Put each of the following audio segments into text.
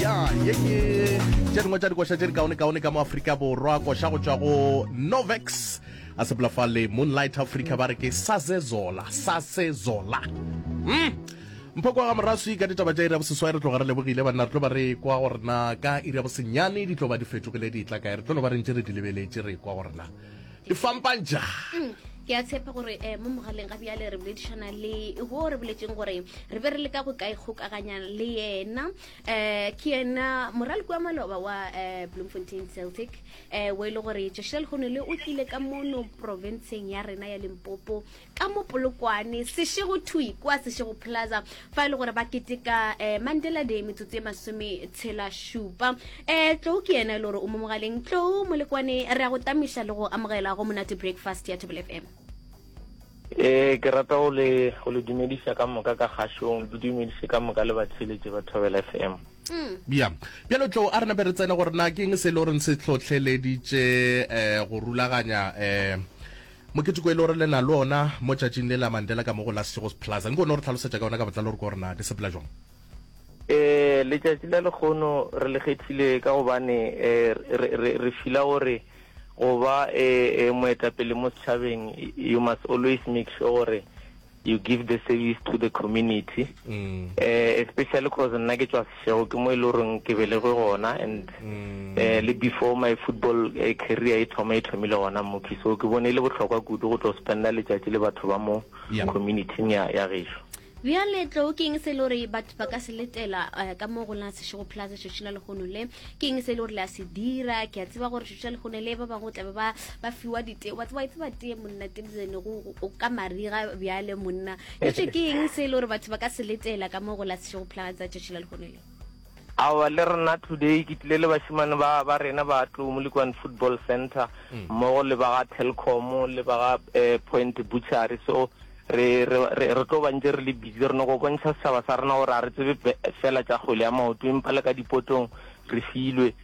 ya ye ke tše dingwe tša dikoša tše di kaone-kaone ka mo aforika borwa koša go tšwa go novex a sepela fa le moonlight africa ba re ke sazezola sazezola mm. mpho kwa ga moraswi ka ditaba tša iri ya boseswai re tloga re lebogile banna re tlo ba re kwa go rena ka iri ya bosenyane di tlo ba di fetogile di tla kae re tlo no ba re ntše re di lebeletše re kwa go rena e fampang ja mm, ke a tshepa gore um mo mogaleng ga bjale re boledišana le go re boletseng gore re be re le ka go kae kgokaganya le yena um ke yena moraloko wa maloba wa um bloemfontein celtic um o e le gore joshel gonele o tlile ka mono provinceng ya rena ya limpopo ka mo polokwane sešego thwi kwa sešego plaza fa e le gore ba keteka um mandela day metsotso e masome tshela šupa um eh, tlou ke yena e le gore o mo mogaleng tlou molekwane re ya go tamiša le go amogela go monate breakfast ya table fm e ke rata go le dumedisa ka moka ka kgašong ke dumedise ka moka le batheletše ba thobela f m mm. ya bjalo tlo a re nape re tsene gore na ke eng se e le goreng se tlhotlheleditše um go rulaganya um Moketeko e le gore le na le ona mo tšatšing le la Mandela ka mo go la Sechegos Plaza, nko o no re tlhalosetša ka yona ka botlalo gore ke gore na le sepela jwang? Ee, letšatši la lekgono re le kgethile ka gobane re re fila gore go ba moetapele mo setšhabeng you must always make sure gore you give the service to the community especially cause nna ke tšwa Seshego ke mo e le goreng ke belegwe gona and le before my football career e thoma e thomile gona Muki so ke bone e le bohlokwa kudu go tlo spenda letšatši le batho ba mo communityng ya ya gešo. Bjale tlou ke eng se e le gore batho ba ka se letela ka mo go la Seshego Plaza tšatši la lehono le ke eng se e le gore le a se dira ke a tseba gore jale go ne le ba bangwe o tlabe ba ba fiwa dite wa tseba itse ba tee monna tebzene go o ka mariga bjale monna e se ke eng se e le gore batho ba ka se letela ka mo go la sešego phulana tsa tšatši la lekgone le awa le rena today ke tlile le bashimane ba ba rena ba tlo mo likwan football center mm. mmogo le ba ga telcom le ba ga eh, point butchery so re re re tlo bantse re le busy re no go bontšha setšhaba sa rena gore a re tsebe fela tša kgwele ya maoto empa le ka dipotong re filwe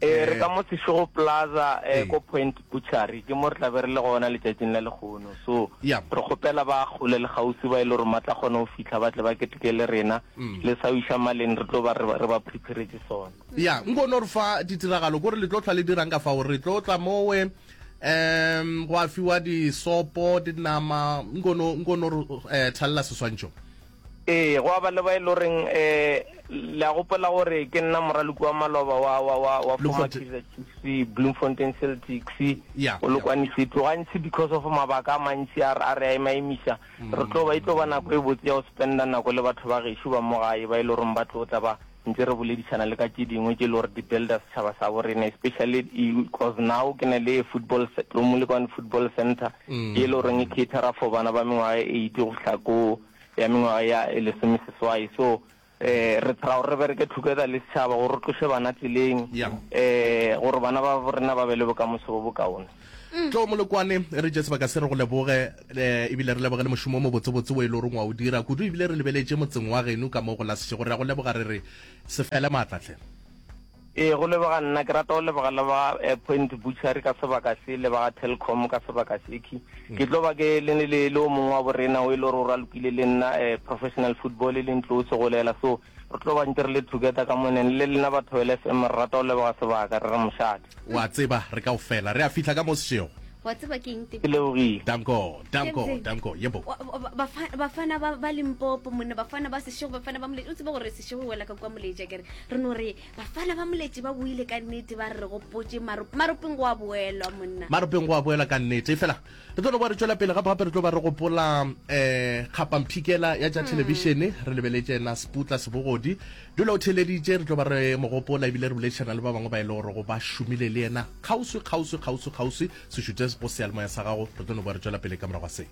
E, re ka mo Seshego Plaza e, ko Point Butchery, ke mo re tla be re le gona letšatšing la lekgono. So, re kgopela ba kgole le kgauswi ba e le gore ma tla kgona go fihla ba tle ba keteke le rena. Le sa wiša maleng re tlo ba re, re ba preparetše sona. Ya, nkono re fa ditiragalo kore le tlo hlwa le dirang ka fao. Re tlo tla mowe, um gwa fiwa disopo, dinama, nkono, nkono re, um thalela seswantšho. Ee, gwa ba le ba e le goreng um le a gopola gore ke nna moraloki wa maloba wa wa wa wa former Kaizer Chiefs, Bloemfontein Celtics, yeah, Polokwane yeah. City. Gantsi because of mabaka a mantsi a a re a emaemisa, re tlo ba e tlo ba nako e botse ya go spenda nako le batho ba gešo ba mo gae ba e le goreng ba tlo tla ba Ntse re boledišana le ka tše dingwe tše e le gore di builder setšhaba sa bo rena especially cause now ke na le football, Lo Molekwane Football Centre ye e le goreng e catera for bana ba mengwaga e eight go fihla ko ya mengwaga ya lesomeseswai. So um re thara gore re bereke together le setšhaba gore re tloše bana tseleng um gore bana ba bo rena ba be le bokamoso bo bokaone. Tlo Molokwane, e re tše sebaka se re go leboge e ebile re leboge le mošomo o mobotsebotse o e le goreng wa o dira kudu ebile re lebeletše motseng wa geno ka mo go la Sešego. Re a go leboga re re se fele maatla hle. Ee, go leboga nna. Ke rata go leboga le ba eh, Point Butchery ka sebaka se le ba ga Telkom ka sebaka sekhwi. Mm. Ke tlo ba ke le ne le le o mongwe wa borena o e le gore o ralokile le nna eh, professional football e leng tlo o segolela so Re tlo ba ntse re le together ka moneng. Le lena batho ba LFM re rata go leboga sebaka, re re mošate. O a tseba, re kaofela re a fihla ka mo sešego. O a tseba ke eng, Teko? Ke lebogile. Danko, Danko, Captain. Danko, yebo. O a, o a, ba, ba, Bafana ba, ba Limpopo, monna, Bafana ba Sešego, Bafana ba Moletši. O tseba gore Sešego e wela ka kua Moletši, a ke re? Re no re, Bafana ba Moletši ba boile ka nnete, ba re re gopotše Marop-, Maropeng go a boelwa, monna. Maropeng go a boelwa ka nnete, efela Re tlo no kwa re tšwela pele, gape-gape re tlo ba re gopola um kgapamphikela ya tša thelebišene, re lebeletše yena Sputla Sebogodi. Dula o theeleditše, re tlo ba re mo gopola ebile re boledišana le ba bangwe ba e le gorego ba šomile le yena kgauswi, kgauswi, kgauswi, kgauswi. Se šutše go seyalemoya sa gago, re tlo no kwa re tšwela pele ka morago ga se.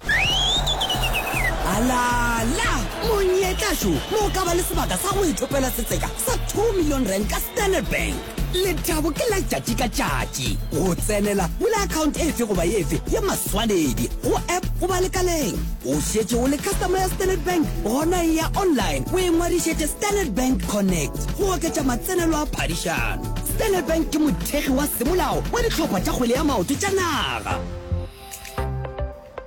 Alala! Monyetla šo mo o ka ba le sebaka sa go ithopela setseka sa two million rand ka Standard Bank. lethabo ke la tšatši ka tšatši go tsenela bula account efe goba efe ya maswanedi go app goba lekaleng o šetše o le customer ya standard bank gona e ya online o e ngwadišetše standard bank connect go oketša matsenelo a phadišano standard bank ke mothekgi wa semolao wa dihlopha tša kgwele ya maoto tša naga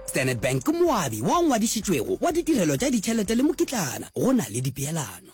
standard bank ke moabi wa ngwadišitšwego wa ditirelo tša ditšhelete le mokitlana go na le dipeelano